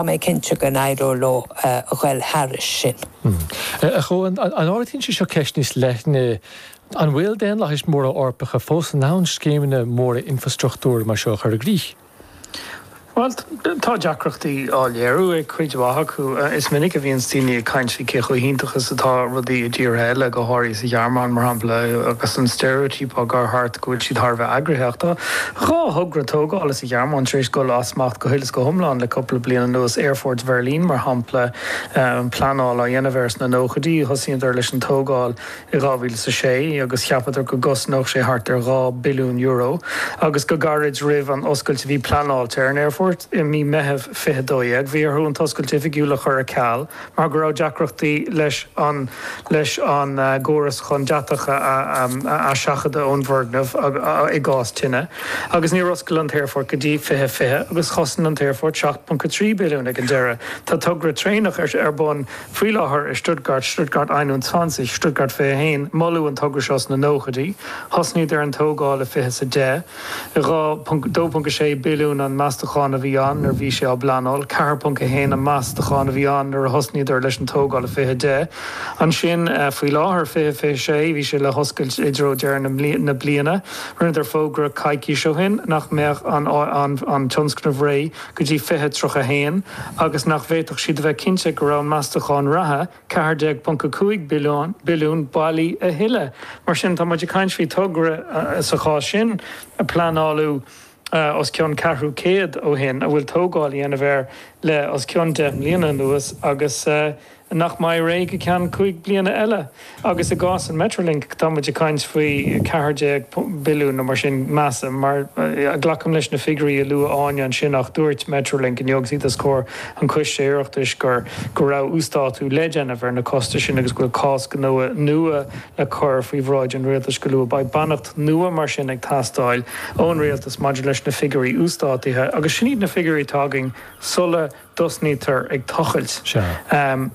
Tá mé cinnte go n-éireoidh leo a ghoil thairis sin. A Chuáin, an ardaíonn sé seo ceist níos leithne, an bhfuil daonlathais mhóra Eorpacha fós in ann scéimeanna móra infreastruchtúir mar seo a chur i gcrích? Bhuel, tá deacrachtaí á léiriú ag cuid mhaith acu. Is minic a bhíonns daoine ag caint faoi cé chomh hiontach is atá rudaí i dtíortha eile, go háirithe sa Ghearmáin, mar shampla, agus an steiréitíopa ag dul thart go bhfuil siad thar a bheith eagraithe. Ach tá. dhá thogra tógála sa Ghearmáin tar éis dul as smacht go huile is go hiomlán le cúpla bliain anuas, Aerfort Bheirlín, mar shampla, pleanáil á dhéanamh air sna nóchaidí, thosaíodar leis an tógáil i 2006 agus cheapadar go gcosnódh sé thart ar dhá billiún euro, agus go gairid roimh an oscailt a bhí pleanáilte ar an aerfort i mí Meitheamh 2012, bhí orthu an t-oscailt oifigiúil a chur ar ceal. mar go raibh deacrachtaí leis an leis an gcóras chun deatach a aisiompú ón bhfoirgneamh i gcás tine agus níor oscail an t-aerfort go dtí 2020 agus chosain an t-aerfort 7.3 billiún ag an deireadh. Tá togra traenach ar bun faoi láthair i Stuttgart, Stuttgart einundzwanzig, Stuttgart 21. Moladh an togra seo sna nóchaidí. Thosnaíodar an tógáil i fiche sa deich. 2.6 billiún an meastachán a bhí ann nuair a bhí sé á phleanáil, 4.1 an meastachán a bhí ann nuair a thosnaíodar leis an tógáil i 2010. Ansin faoi láthair, 2026, bhí sé le hoscailt i dtreo deireadh na bliana. Rinneadar fógra coicís ó shin nach mbeadh an tionscnamh réidh go dtí 2031 agus nach bhféadfadh siad a bheith cinnte go raibh an meastachán reatha, 14.5 billiún, bailí a thuilleadh. Mar sin, tá muid ag caint faoi togra, sa chás sin, a pleanáladh os cionn ceathrú céad ó shin, a bhfuil tógáil á dhéanamh air le os cionn deich mbliana anuas agus nach mbeidh réidh go ceann cúig bliana eile. Agus i gcás an Metrolink, tá muid ag caint faoi cheathair déag billiún nó mar sin, measaim. Mar glacaim leis na figiúirí a luaigh Áine ansin ach dúirt Metrolink inniu agus iad os comhair an Coiste Oireachtais go raibh uasdátú le déanamh ar na costais sin agus go bhfuil cás gnó nua le cur faoi bhráid an Rialtais go luath. Beidh beannacht nua mar sin ag teastáil ón Rialtas maidir leis na figiúirí uasdátaithe agus sin iad na figiúirí atá againn sula dtosnaítear ag tochailt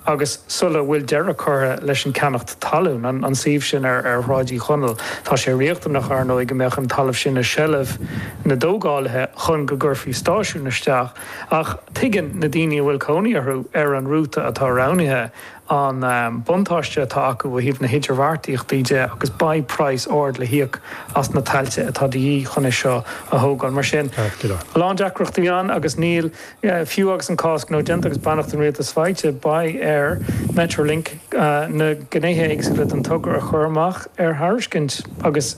agus sula bhfuil deireadh curtha leis an gceannacht talún, an suíomh sin ar Shráid Uí Chonaill. Tá sé riachtanach, ar ndóigh, go mbeadh an talamh sin i seilbh na dtógálaithe chun go gcuirfí stáisiún isteach. Ach tuigeann na daoine a bhfuil cónaí orthu ar an rúta atá roghnaithe an buntáiste atá acu ó thaobh na hidirbheartaíochta de agus beidh praghas ard le híoc as na tailte atá de dhíth chun é seo a thógáil. Mar sin, a lán deacrachtaí ann agus níl, fiú agus an cás gnó déanta agus beannacht an Rialtais faighte, beidh ar Metrolink na gnéithe éagsúla den togra a chur amach ar thairiscint agus,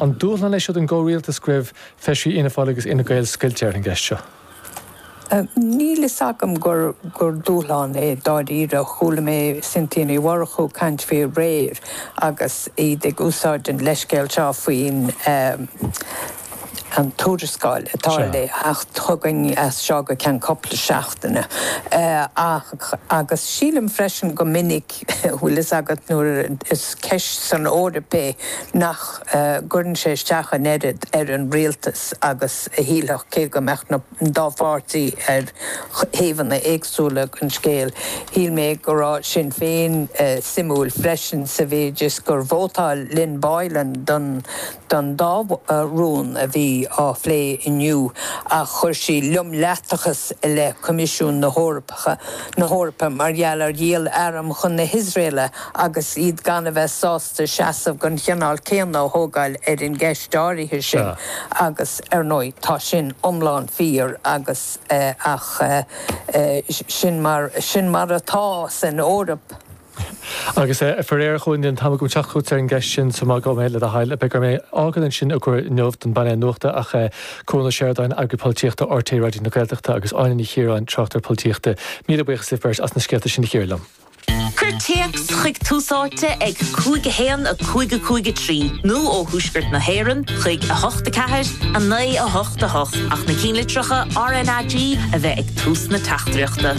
An dúshlán é seo don gcomhrialtas go raibh feisirí Fhianna Fáil agus Fhine Gael scoilte ar an gceist seo? Níl fhios agam gur dúshlán é dáiríre. Chuala mé Cynthia Ní Mhurchú ag caint faoi aréir agus iad ag úsáid an leithscéal seo faoin tuarascáil atá le theacht chugainn as seo go ceann cúpla seachtaine ach agus sílim freisin go minic bhfuil fhios agat, nuair is ceist san Eoraip é, nach gcuireann sé isteach an oiread ar an rialtas agus a shílfeadh, cé go mbeadh na dá pháirtí ar thaobhanna éagsúla den scéal. Shíl mé go raibh Sinn Féin suimiúil freisin sa mhéid is gur vótáil Lynn Boylan don dá rún a bhí á phlé inniu ach chuir sí fimíneachas i leith Coimisiún na hEorp na hEorpa mar gheall ar dhíol airm chun na hIosraelaigh agus iad gan a bheith sásta seasamh den chineál céanna a thógáil ar an gceist áirithe sin agus, ar ndóigh, tá sin iomlán fíor agus ach sin mar sin mar atá san Eoraip. Agus faraor ní raibh an t-am agam teacht chugat ar an gceist sin so maith dom é le do thoil. Beidh orm é fhágáil ansin i gcomhair inniu don bpainéal nuachta ach Cuan Ó Seireadáin, Eagraí Polaitíochta RTÉ Raidió na Gaeltachta agus Áine Ní Chiaráin, Tráchtaire Polaitíochta, míle buíochas libh beirt as na scéalta sin a chíoradh liom. Cuir téacs chuig Tús Áite ag 5 1 5 5 3 nó ó Thuaisceart na hÉireann chuig 8 4 9 8 8 ach na cinnlitreacha RNAG a bheith ag tús na teachtaireachta.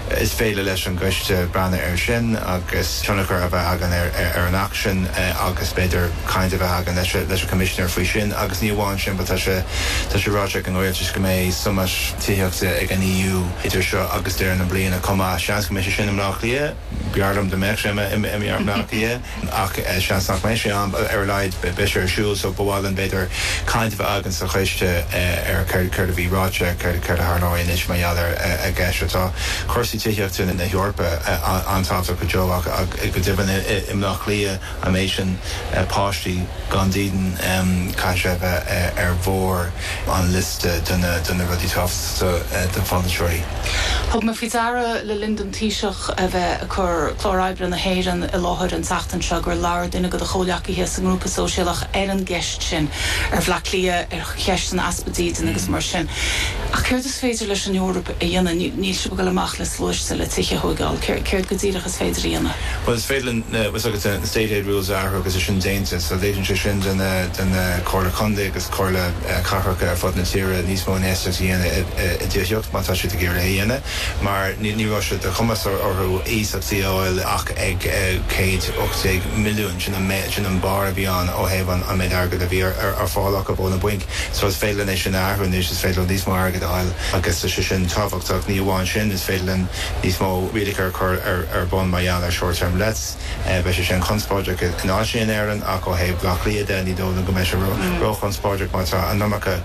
Is féidir leis an gCoiste breathnú air sin agus tionchar a bheith againn ar an Acht sin agus b'fhéidir caint a bheith againn leis an gCoimisinéir faoi sin agus ní amháin sin but tá sé tá sé ráite ag an Rialtas go mbeidh summit tithíochta ag an EU idir seo agus deireadh na bliana chomh maith. Seans go mbeidh sé sin i mBleá Cliath. B'fhearr liom dá mbeadh sé i mBleá Cliath. ach seans nach mbeidh sé ann, ar a laghad beidh sé ar siúl, so ba mhaith linn b'fhéidir caint a bheith againn sa choiste ar céard a bhí ráite, céard a tharlóidh anois mar gheall ar an gceist seo. Tá cúrsaí tithíochta na hEorpa an-tábhachtach go deo ach go deimhin i mBleá Cliath an méid sin páistí gan dídean caithfidh sé a bheith ar bharr an liosta de na rudaí tábhachtacha do pholaiteoirí. Thug mé faoi deara le linn don Taoiseach a bheith ag cur clár oibre na hÉireann i láthair an tseachtain seo gur labhair duine de do chomhleacaithe sa nGrúpa Sóisialach ar an gceist sin, ar Bhleá Cliath, ar cheist an easpa dídine agus mar sin. Ach céard is féidir leis an Eoraip a dhéanamh? Níl sibh ag dul amach le sluaiste le tithe a thóigeáil. Céard go díreach is féidir a dhéanamh? Bhuel, is féidir linn, bhfuil 's agat, na State Aid Rules a athrú agus é sin déanta. So léiríonn sé sin do na, do na Comhairle Contae agus Comhairle Cathracha ar fud na tíre níos mó infheistíocht a dhéanamh i dtithíocht má tá siad ag iarraidh é a dhéanamh. mar ní raibh sé de chumas orthu iasacht a fháil ach ag 1,800 milliún, sin an méid, sin an barr a bhí ann ó thaobh an méid airgid a bhí ar fáil acu ó na bainc. So is féidir linn é sin a athrú anois, is féidir linn níos mó airgid a fháil agus tá sé sin tábhachtach. Ní amháin sin, is féidir linn níos mó rialacha a chur ar bun mar gheall ar short term lets, beidh sé sin conspóideach in áiteanna in Éirinn ach ó thaobh Bhleá Cliath de ní dóigh liom go mbeidh sé ró-chonspóideach mar tá an iomarca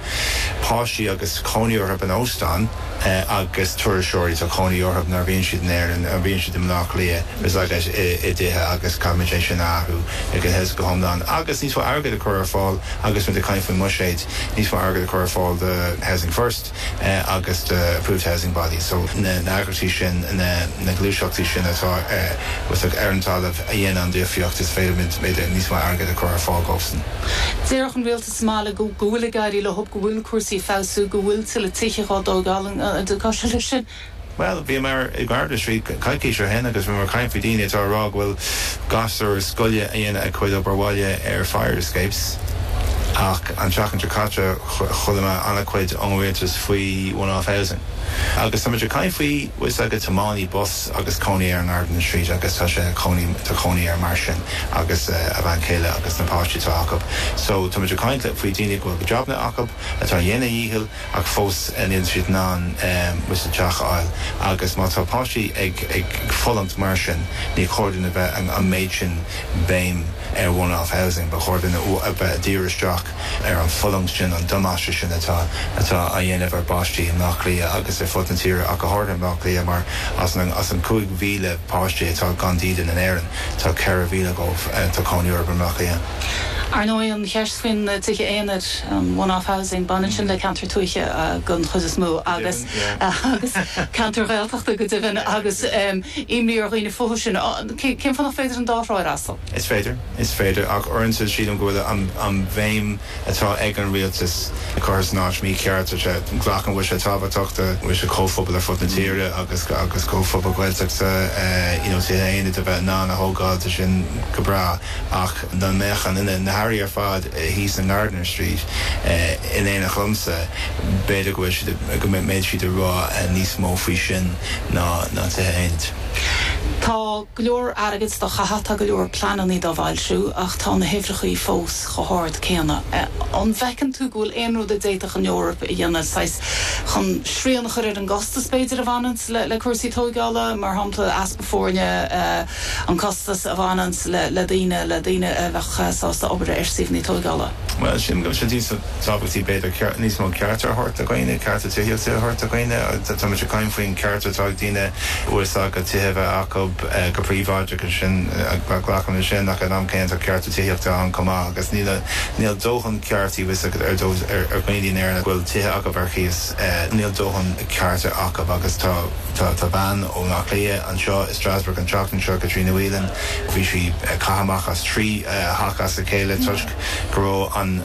páistí agus cónaí orthub in óstáin. agus turasóirí, tá cónaí orthub nuair a bhíonn siad in Éirinn, nuair a bhíonn siad i mBleá Cliath tá siad i dtithe agus caithfimid é sin a athrú ag an hse go hiomlán agus níos mó airgid a chur ar fáil agus muid ag caint faoin mbuiséid, níos mó airgid a chur ar fáil do Housing First agus do Approved Housing Bodies, so na n-eagraíochtaí sin, na gluaiseachtaí sin atá ar an talamh a dhéanann an difríocht is féidir linn níos mó airgid a chur ar fáil dóibhsan. Déarfadh an rialtas go bhfuil ag éirí leob go bhfuil cúrsaí ag feabhsú go bhfuil tuilleadh tithe dhá dtógáil an nglacfá leis sin? Bhuel, bhíomar i nGardiner Street coicís ó shin agus bhíomar ag caint faoi dhaoine atá ag rá go bhfuil gasúir scoile ag déanamh a gcuid obair bhaile ar fire escapes ach an tseachtain seo caite chuala mé an-chuid ón rialtas faoi one off housing agus táimid ag caint faoi bhfuil fhios agat tiománaí bus agus cónaí air i nGardiner Street agus tá sé tá cónaí air mar sin agus a bhean chéile agus na páistí atá acu. So tá muid ag caint faoi dhaoine go bhfuil jabanna acu, atá ag déanamh a ndícheall ach fós níl siad in ann an teach a fháil agus má tá páistí ag ag fulaingt mar sin ní chóir dúinn a bheith an méid sin béim ar one-off housing, ba chóir dúinn a bheith ag díriú isteach. ar an bhfulaingt sin, an damáiste sin atá á dhéanamh ar pháistí i mBleá Cliath agus ar fud na tíre ach go háirithe i mBleá Cliath mar as an 5,000 páiste atá gan dídean in Éirinn, tá 4,000 dhóibh, tá cónaí orthu i mBleá Cliath. Ar ndóigh, an cheist faoi na tithe aonair, an one-off housing, baineann sin le ceantair tuaithe den chuid is mó agus ceantair Ghaeltachta go deimhin agus imní ar dhaoine fúthu sin. Cén fáth nach féidir an dá thrá a fhreastal? Is féidir. Is féidir, ach uaireanta sílim go bhfuil an bhéim atá ag an rialtas curtha san áit mícheart. Glacaim go bhfuil sé tábhachtach go bhfuil comhphobail ar fud na tíre agus comhphobail Ghaeltachta you know tithe aonair a bheith in ann a thógáil tá sin go breá ach dá mbeadh na hairí ar fad thíos i nGardiner Street in éineacht liomsa b'fhéidir go mbeadh siad ag rá níos mó faoi sin ná tithe aonair. Tá. go leor airgid dhá chaitheamh, tá go leor pleananna dhá bhfoilsiú ach tá na huimhreachaí fós chomh hard céanna. An bhfeiceann tú go bhfuil aon rud a d'fhéadfadh an Eoraip a dhéanamh, saghas, chun srian a chur ar an gcostas, b'fhéidir, a bhaineanns le cúrsaí tóigeála, mar shampla, easpa foirne, an costas a bhaineanns le daoine, le daoine a bheadh sásta obair ar suíomhanna tóigeála? Bhuel, sin, go bhfuil sé díosail. tábhachtaí b'fhéidir níos mó cearta a thabhairt do dhaoine, cearta tithíochta a thabhairt do dhaoine. Tá muid ag caint faoin cheart atá ag daoine uasaicme tithe a bheith acu go príobháideach agus sin, glacaim leis sin, ach ag an am céanna tá cearta tithíochta ann chomh maith agus níl dóthain cearta ag daoine in Éirinn a bhfuil tithe acu ar chíos, níl dóthain cearta acu agus tá bean ó Áth Cliath anseo i Strasbourg an tseachtain seo, Caitríona Whelan, bhí sí caite amach as trí theach as a chéile toisc go raibh an.